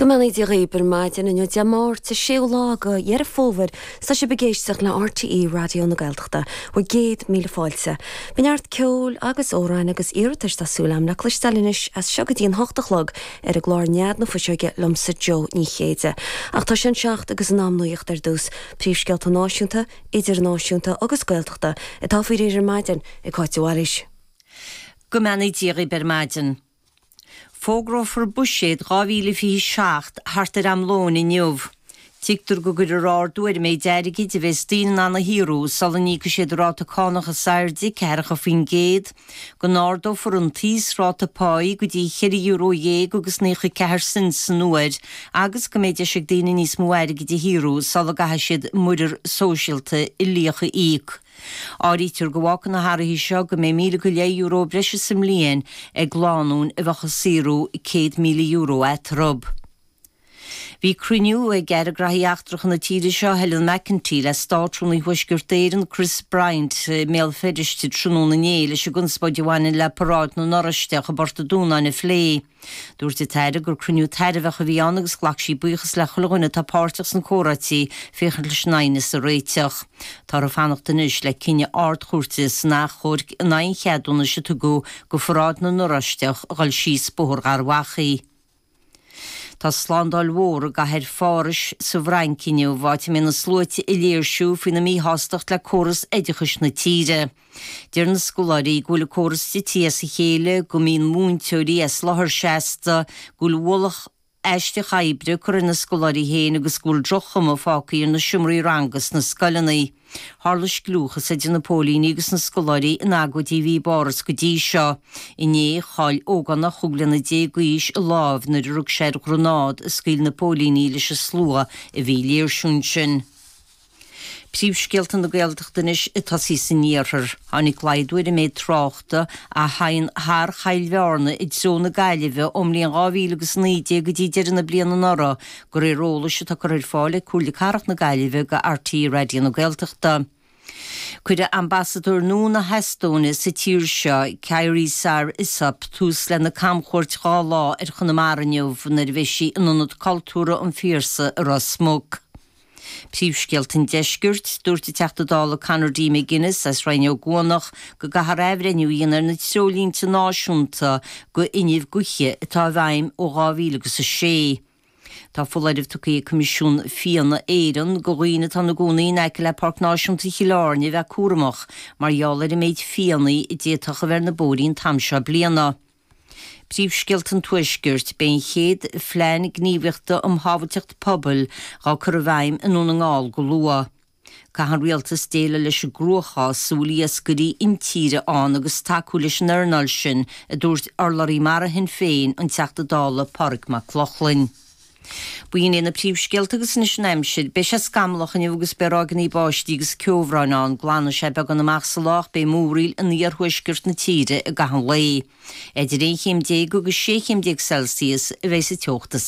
Go mbeannaí Dia dhaoib ar maidin inniu Dé Máirt 6ú lá go Dheireadh Fómhair tá sibh ag éisteacht le RTÉ Raidió na Gaeltachta bhur gcéad míle fáilte. Beidh neart ceoil agus amhráin agus iarratais tá súil agam le cloisteáil anois as seo go dtí an hocht a chlog ar an gclár Nead na Fuiseoige liomsa Joe Ní Chéide. Ach tá sé an seacht agus in am nuacht ar dtús. Príomhscéalta náisiúnta, idirnáisiúnta agus Gaeltachta atá faoi réir ar maidin ag Cáit de Bhailís. Go mbeannaí Dia dhaoib ar maidin. Fógrófar Buiséad 2027 thart ar am lóin inniu. Tuigtear go gcuirfear ardú ar an méid airgid a bheas daoine in ann a shaothrú sula n-íocfaidh siad a ráta cánach is airde, ceathracha faoin gcéad, go n-ardófar an t-íosráta páí go dtí cheithre euro dhéag agus naocha a ceathair cent san uair agus go mbeidh deis ag daoine níos mó airgid a shaothrú sula gcaithfidh siad muirear sóisialta uilíoch a íoc. Áirítear go bhfágfaidh na hathruithe seo go mbeidh míle go leith euro breise sa mbliain ag lánúin a bheadh ag saothrú €100,000 eatarthu. Bhí cruinniú ag Aire Graithí Eachtracha na tíre seo, Helen McEntee, le Státrúnaí Thuaisceart Éireann, Chris Bryant, i mBéal Feirste tráthnóna inné leis an gconspóid a bhaineann le Paráid na nOráisteach i bPort an Dúnáin a phlé. Dúirt an tAire gur cruinniú tairbheach a bhí ann agus ghlac sí buíochas le chuile dhuine atá páirteach sna comhráití féachaint leis an aighneas a réiteach. Tá orthu fanacht anois le cinneadh na hArd-Chúirte san achomhairc in aghaidh an cheadúnais a tugadh go Pharáid na nOráisteach a dhul síos Bóthar Gharbh Achaidh. Tá slándáil mhór i gcathair Phárais sa bhFrainc inniu, áit a mbeidh na sluaite ag léirsiú faoina míshástacht le córas oideachais na tíre. Deir na scoláirí go bhfuil an córas tite as a chéile, go mbíonn múinteoirí as láthair seasta, go bhfuil ualach aisteach oibre á chur ar na scoláirí féin agus go bhfuil droch-chuma fágtha ar na seomraí ranga sna scoileanna. Tharla scliúchas idir na póilíní agus na scoláirí in agóid a bhí i bPáras go dtí seo. Inné, chaill ógánach chúig bliana déag d'aois a lámh nuair a rug sé ar ghreanád a scaoil na póilíní leis an slua a bhí ag léirsiú ansin. Príomhscéalta na Gaeltachta anois ag tosaí san iarthar. Tháinig laghdú ar an méid tráchta a theigheann thar Choill Bhearna i dtreo na Gaillimhe ón mbliain 2000 agus 19 go dtí deireadh na bliana anuraidh, de réir eolais atá curtha ar fáil ag Comhairle Cathrach na Gaillimhe go RTÉ Raidió na Gaeltachta. Cuirfidh Ambasadóir nua na hEastóine sa tír seo, Kairi Saar-Isop, tús lena camchuairt dhá lá ar Chonamara inniu nuair a bheidh sí in Ionad Cultúrtha an Phiarsaigh i Ros Muc. Príomhscéalta an Deiscirt, Dúirt an Teachta Dála Conor D. McGuinness as Rinn Ó gCuanach go gcaithfear athbhreithniú a dhéanamh ar na treoirlínte náisiúnta d'fhuinneamh gaoithe atá i bhfeidhm ó 2000 agus 6. Tá foláireamh tugtha ag Coimisiún Fianna Éireann go dhaoine atá ina gcónaí in aice le Páirc Náisiúnta Chill Airne a bheith cúramach mar gheall ar an méid fianna a d'fhéadfadh a bheith ar na bóithrí an t-am seo bliana. Príomhscéalta an Tuaiscirt, Beidh an chéad Phlean Gníomhaíochta um Shábhailteacht Pobail dhá cur i bhfeidhm i nDún na nGall go luath. Caithfidh an Rialtas déileáil leis an gcruachás a bhfuil iascairí intíre ann agus tacú leis an earnáil sin, a dúirt urlabhraí mara Shinn Féin, an Teachta Dála Pádraig Mac Lochlainn. Ba shin iad na príomhscéalta agus anois an aimsir. Beidh sé scamallach inniu agus beidh ráigeanna báistí agus ceobhráin ann. Glanfaidh sé beagán amach sa lá ach beidh múraíl in iarthuaisceart na tíre i gcaitheamh an lae. Idir 11 chéim agus 16 chéim Celsius a bheidh sa teocht is